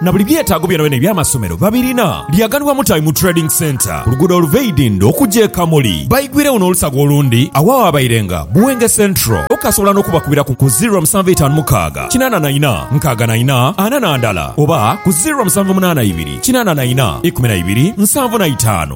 na buli byetaago byonabyona eby'amasomero babirina. Lyaganibwa Mutabi mu Trading Centre ku luguudo oluva e Idindho okuja e Kamuli. Baigwiregho n'olusaga olundi agho awaabairenga Buwenge Central. Okasobola n'okubakubira ku ku ziro musanvu eitaanu mukaaga kinaana na ina nkaaga na ina ana na ndala oba ku ziro musanvu munaana ibiri kinaana na ina ikumi na ibiri nsanvu na itaanu.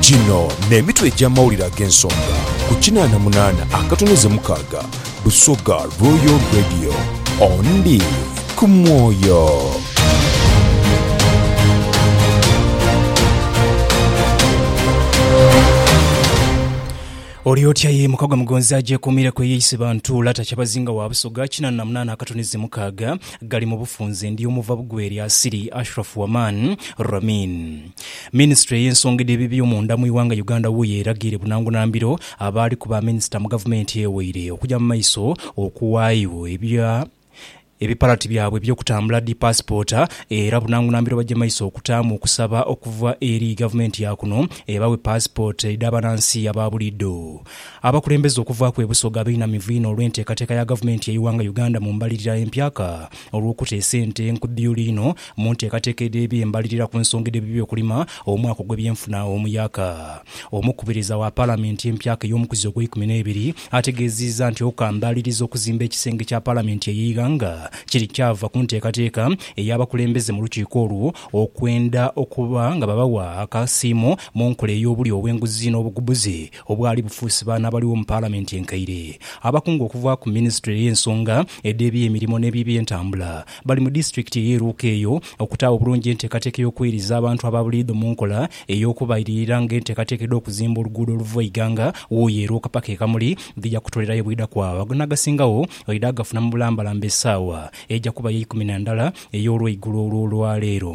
Gino n'emitwe egy'amawulire ag'ensonga ku kinaana munaana akatoneze mukaaga Busoga Royal Radio. Ondi ku mwoyo. Oli otya ye mukagwa mugonzi agyekuumireku eyeise bantu lata Kyabazinga wa Busoga kinaana na munaana akatoneze mukaaga. gali mu bufunze ndi omuva bugwe eri Asili Ashraf Waman Ramin. Minisitule y'ensonga edh'eby'ebyomunda mu ighanga Uganda wuyo eragiire bunangunambiro abaaliku ba minisita mu gavumenti eweire okugya mu maiso okuwaayo ebya ebipalati byabwe eby'okutambula dhi paasipoota era bunangunambiro bagye maiso okutaamu okusaba okuva eri gavumenti ya kuno ebawe paasipoota edh'abanansi aba buliidho. Abakulembeze okuvaaku e Busoga beinamivu inho olw'enteekateeka ya Gavumenti y'eighanga Uganda mu mbalirira empya ka olw'okuta esente enkudhuyuli inho mu nteekateeka edh'eby'embalirira ku nsonga edh'eby'okulima omwaka ogw'ebyenfuna omuyaka. Omukubiriza wa Palamenti empyaka ey'omukuzi ogweikumi n'ebiri ategeeziiza nti okukambaliriza okuzimba ekisenge kya Palamenti ey'eighanga kiri kyava ku nteekateeka ey'abakulembeze mu lukiiko olwo okwenda okuba nga babawa akasiimo mu nkola ey'obulyo obw'enguzi n'obugubuzi Obwali bufuusi baano abaligho mu Palamenti enkaire, abakungu okuva ku Minisitule ey'ensonga edh'ebyemirimo n'ebyebyentambula bali mu disitulikiti ey'e Luuka eyo okutaawo obulungi enteekateeka ey'okweiriza abantu aba buliidho mu nkola ey'okubailirira nga enteekateeka edh'okuzimba oluguudo oluva Iganga Wuuyo e Luuka paka e Kamuli dhija kutolerayo bwidha kwagha n'agasingawo oidha gafuna mu bulambalamba esaawa eija kuba y'eikumi na ndala ey'olweigulo olw'olwaleero.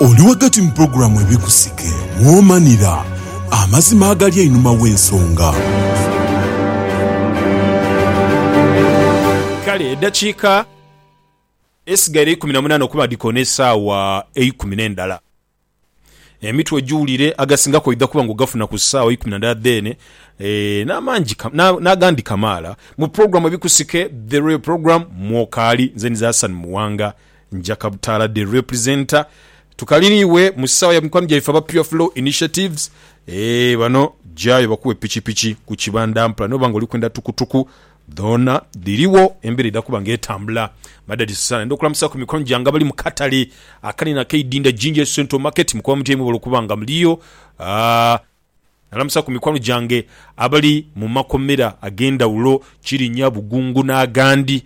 Oli ghagati mu pulogulaamu Ebikusike mw'omanira amazima agali einhuma w'ensonga. Kale edhakiika esigaire eikumi na munaana okuba dhikoona esaawa eikumi n'endhala. Emitwe giwulire, agasingaku oidha kuba nga ogafuna ku saawa eikumi na ndhala dheene, n'agandi kamaala. Mu pulogulaamu Ebikusike, The Royal Programme, mw'okaali. Nze nize Hassan Muwanga, Nja Kabutaala the representer tukali ni iwe mu saawa ya mikwano gyaife aba Pure Flow Initiatives eeh bano jayo bakuwe pikipiki ku kibanda mpla noba nga olikwenda tukutuku dhoona dhiriwo embera edha kuba nga etambula madadi sana enda okulamusa ku mikwano gyange abali mu katale akanene aka Idinda Ginger Central Market mukoba mutya imwe bwolwokuba nga muliyo aah. Nalamusa ku mikwano gyange abali mu makomera ag'endhawulo, Kirinya, Bugungu n'agandi.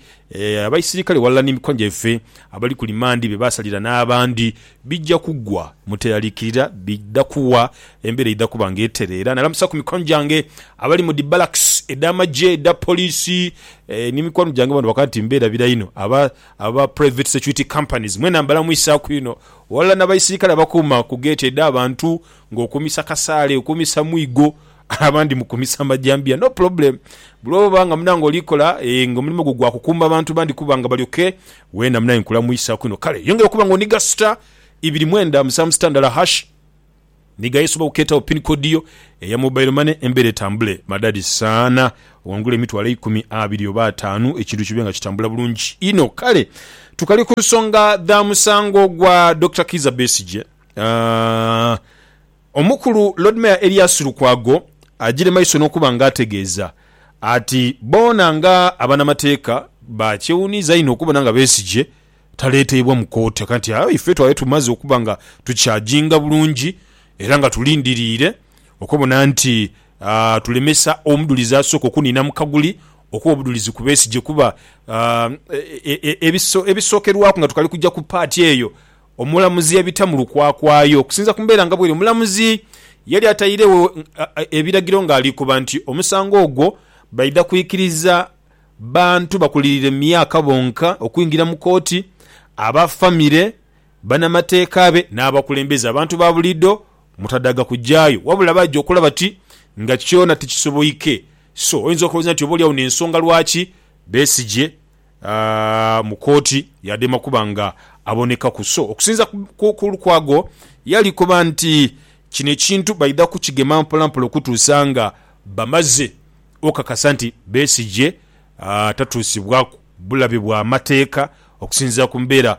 Abaisirikale ghalala ni mikwano gyaife abali ku limandi be baasalira n'abandi bija kugwa. Muteeraliikirira bidha kuwa, embeera eidha kuba nga etereera. Nalamusa ku mikwano gyange abali mu dhi barracks edh'amagye, edha poliisi ni mikwano gyange bona bakoba nti mbeera bira inho. Aba Private Security Companies mwena mbalamwisaaku inho ghalala n'abaisirikale abakuuma ku geeti edh'abantu Nga okumisa kasaale, okumisa mwigo, abandi mukumisa majambiya no problem bwoba nga munange olikola eeh nga omulimo gwo gwa kukuuma bantu bandi kuba nga balyoke weena munange nkulamuisaku inho kale yongera okuba nga oniga star ibiri mwenda musanvu sita ndala hash nigayo osobola okukeetawo pin code yo eya mobile money embeera etambule madadi saana owangule emitwalo eikumi abiri oba ataanu ekintu kibe nga kitambula bulungi inho kale tukali kunsonga dha musango gwa Dokita Kiiza Besigye. Omukulu Lord Mayor Erias Lukwago agire maiso n'okuba nga ategeeza ati boona nga abanamateeka bakyewuniiza inho okubona nga Besigye taleeteibwa mu kooti aka nti aye ife twali tumaze okuba nga tukyajinga bulungi era nga tulindiriire okubona nti tulemesa omudulizi asooka okuniina mu kaguli okuwa obudulizi ku Besigye kuba ebisookerwaku nga tukali kuja ku paati eyo Omulamuzi yabita mu lukwakwayo. Okusinza ku mbeera nga bweri, omulamuzi yali atairegho ebiragiro ng'ali koba nti omusango ogwo baidha kwikiriza bantu bakulirire mu myaka bonka okwingira mu kooti, aba famire, banamateeka be n'abakulembeze. Abantu ba buliidho mutadaaga kujaayo wabula baidha okulaba ti nga kyona tikisoboike. So oyinza okulowooza nti oba oli agho n'ensonga lwaki Besigye mu kooti yadema kuba nga abonekaku so okusinza ku Lukwago yali koba nti kino ekintu baidha kukigema mpola mpola okutuusa nga bamaze okakasa nti Besigye tatuusibwaku bulabe bwa mateeka okusinzira ku mbeera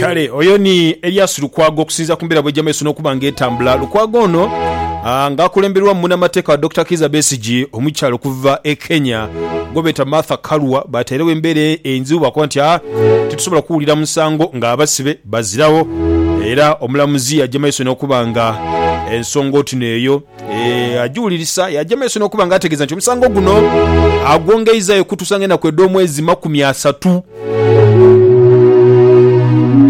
Kale oyo ni Elias Lukwago okusinzira ku mbeera bwejja mu maiso n'okuba nga etambula. Lukwago ono ah, nga akulemberwamu munamateeka wa Dokita Kiiza Besigye omukyala okuva e Kenya gwebeeta Martha Karua batairegho embeera e- enzibu bakoba nti ah, titusobola kuwulira musango nga abasibe baziragho era omulamuzi yajja mu maiso n'okuba nga ensonga otino eyo Eh, agiwulirisa yaja maiso n'okuba nga ategeeza nti omusango guno agwongeizayo okutuusa nga enaku edh'omwezi makumi asatu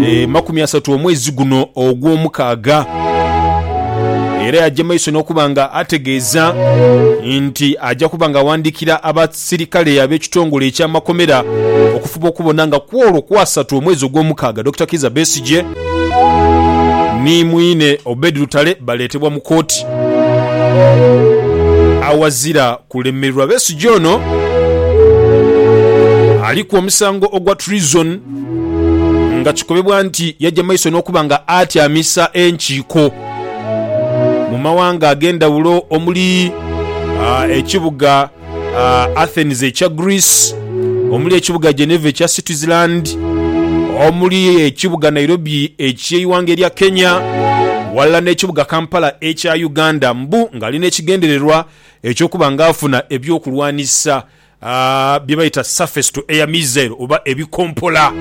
Eh, makumi asatu omwezi guno ogw'omukaaga era yaja maiso n'okuba nga ategeeza nti aja kuba nga awandiikira aba sirikale ab'ekitongole eky'amakomera okufuba okubona nga kw'olwo kwasatu omwezi ogw'omukaaga Dokita Kiiza Besigye ni mwine Obed Lutale baleetebwa mu kooti awazira kulemererwa. Besigye ono aliku omusango ogwa Treason nga kikobebwa nti yaja maiso n'okuba nga atyamisa enkiiko mu mawanga ag'endhawulo omuli ekibuga Athens ekya Greece, omuli ekibuga Geneva ekya Switzerland, omuli ekibuga Nairobi eky'eighanga erya Kenya ghalala n'ekibuga Kampala ekya Uganda mbu ng'ali n'ekigendererwa eky'okuba nga afuna ebyokulwanisa bye bayita surface to air missile oba ebikompola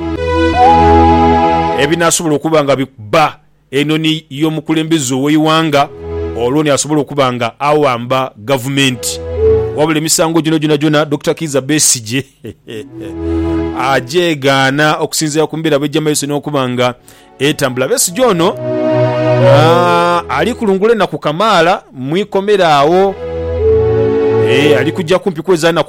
ebinaasobola okuba nga bikuba Eno ni y'omukulembeze ow'eighanga olwo ni asobola okuba nga awamba gavumenti. Wabula emisango gino gyonagyona Dokita Kiiza Besigye agyegaana okusinziira ku mbeera bw'eija mu maiso n'okuba nga etambula. Besigye ono ali kulungula enaku kamaala mu ikomera agho. Ali kuja kumpi kweza naku.